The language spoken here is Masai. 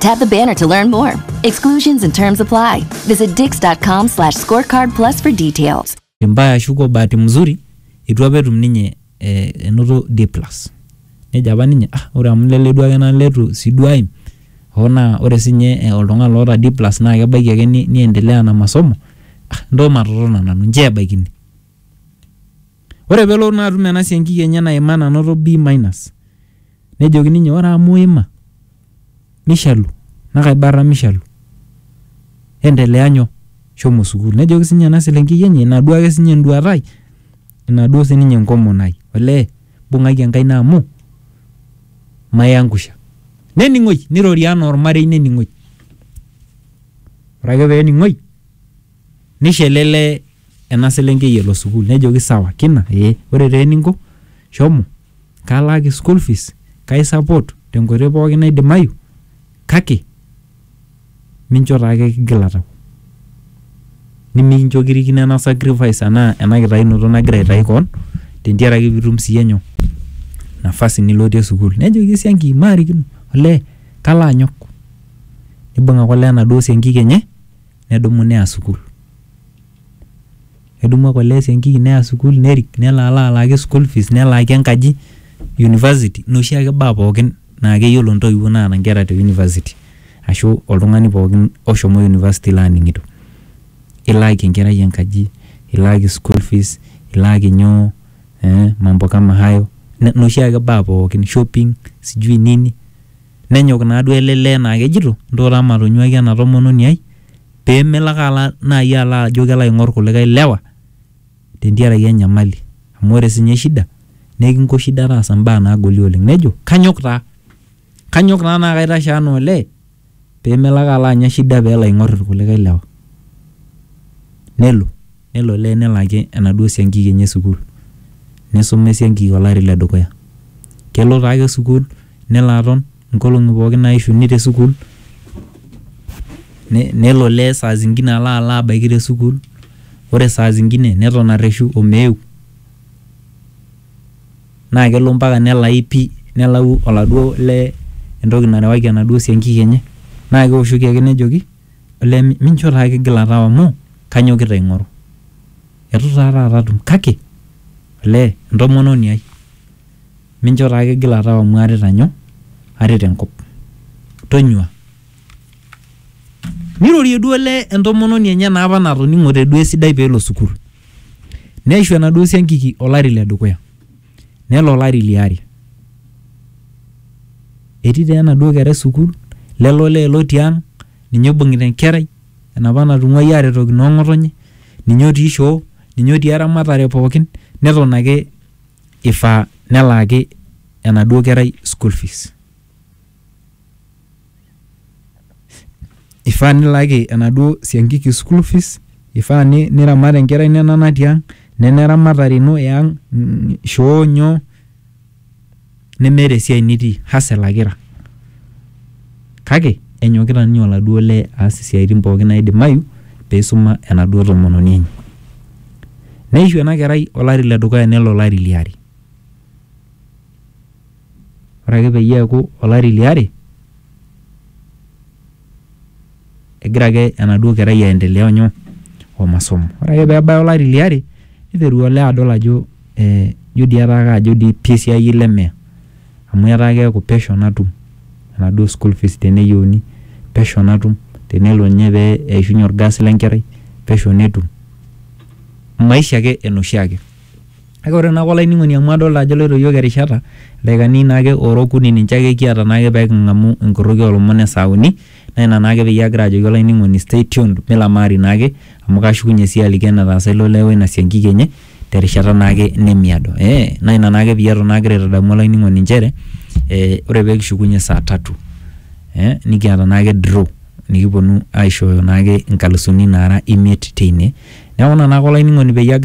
Tap the banner to learn more. Exclusions and terms apply. Visit dix.com slash scorecard plus for details. mbaya ashu kwa bahati mzuri itu apa etum ninye eh, enoto D plus nejo apa ninye ah ore amu lele duake naa letu si duo aim hoo naa ore sinye eh, oltung'ani loota D plus naa kebaiki ake ni, niendelea na masomo ah, ntoo matotona nanu nchoo ebaikini Ore pelo naa atum ena siankiki enye naima nanoto B minus nejoki ninye ore amu iima mishalu naa kaibarra mishalu endelea nyoo shomo sukuul nejoki sinye ena selenkei enye ina duo ake sinye enduata ai ina duo sininye enkomon ai olee bung'aki enkaina amu maiangusha nening'oi nirori anaa ormarei nening'oi ore ake peening'oi nisho ele lee Ena selenkei elo sukuul. Nejoki sawa kina ee. Ore taa eninko shomo kalaaki school fees kai support te nkoitoi pookin naidimayu kake mincho taa ake kigila tau. Nimincho kirikino ena sacrifice anaa ena kitayunoto nagira aitayu koon te ntiaraki pitum sii iyie nyoo? Nafasi nilotie sukuul. Nejoki esiankiki maarikino olee kalo anyok. Nibung ake olee enaduo siankiki enye nedumu neya sukuul. Nedumu ake olee esiankiki neya sukuul nerik nelo alo alaaki school fees nelaaki enkaji, university nena oshiake baa pooki naa keyiolo intoiwuo naata inkera te university ashu oltung'ani pooki oshomo university laning'ito. Ilaaki enkerai enkaji, ilaaki school fees, ilaaki nyoo, mambo kama hayo, nena oshiake baa pooki, shopping, sijui nini. Nenyok naaduo ele lee naa kejito ntoo taa matonyuaki ena tomononi ai. pemelo ake ala nai ala ajo kelo aing'or kulikae lewa tentiaraki enyamali. Amu ore sinye shida naa ekinko shida taasa mbaa nagoli oleng. Nejo kanyok taa, kanyok taa naa kaitashe anaa olee pemelo ake ala anya shida pelo aing'or kulikae lewa. Nelo. Nelo olee nelo ake enaduo siankiki enye sukuul. Neisuma esiankiki olari le dukuya. Kelo taa ake sukuul nelo aton nkolong'i pooki naaishuni te sukuul. Nelo olee saa zingine alo alo abaiki te sukuul. Ore saa zingine neton arreshu o meeu. Naa kelo mpaka nelai pii nelau oladuo lee entoki narewaki enaduo siankiki enye. Naa keoshoki ake nejoki Olee mincho taa kigila tau amu kanyokita aing'oru. Eitu taa taata atum kake olee entomononi ai mincho taa kigila tau amu aarita nyoo, aarita enkop. Tonyua. Neirorie duo olee entomononi enye naa opa natoning'ote duo esidai peelo sukul. Neishu enaduo siankiki olari ledukuya. Nelo olari li are. Etii taa enaduo kerai sukuul, lelo olee lotii ang', ninye oibung'ita enkerai, enapa natung'uayie aretoki noo ng'otonye, ninye otii shoo, ninye otii eramatare pookin, neton ake ifaa nelaaki enaduo kerai school fees. Ifaa nilaki enaduo siankiki school fees, ifaa niramat enkerai ino ena natii ang', nena eramatare ino e ang', shoo nyoo nemeeta esiai nitii hustle ake ira. Kake enyokita ninye oladuo lee aas isiaitin pookin naidimayu peisuma enaduo tomononi enye. Neishu ena kerai olari le dukuya nelo olari liare. Ore ake peyie eaku olari le are, egira ake enaduo kerai aendelea o nyoo? o masomo. Ore ake peebaya olari le are neiteru olee adol ajo ijo dii etaa kajo dii pii esiai ele lee amu etaa keaku pesho natum enaduo school fees teneyieuni, pesho natum tenelo ninye pee eishunye olgas le nkerai pesho netum, maisha ake enoshiake. Kake ore naake olainining'oni amu adolta ajo eloito iyiook erishata, ildaikani naake oora okuni ninche ake kiata naake pee king'amu enkorroki oo lomon e saa uni naa ina naake peyie agira ajoki olainining'oni stay tuned milamaari naake amu kashukunye sii aliki enetaasa ilo lee woina siankiki enye terishata naake nemiado. Ee naa ina naake peyie aton agira aitadamu olainining'oni inchere ee ore pee kishukunye saa tatu ee nikiata naake draw nikipwonu aishooyo naake inkalusuni naara imiet teine. Neeku ina naake olainining'oni peyie agira..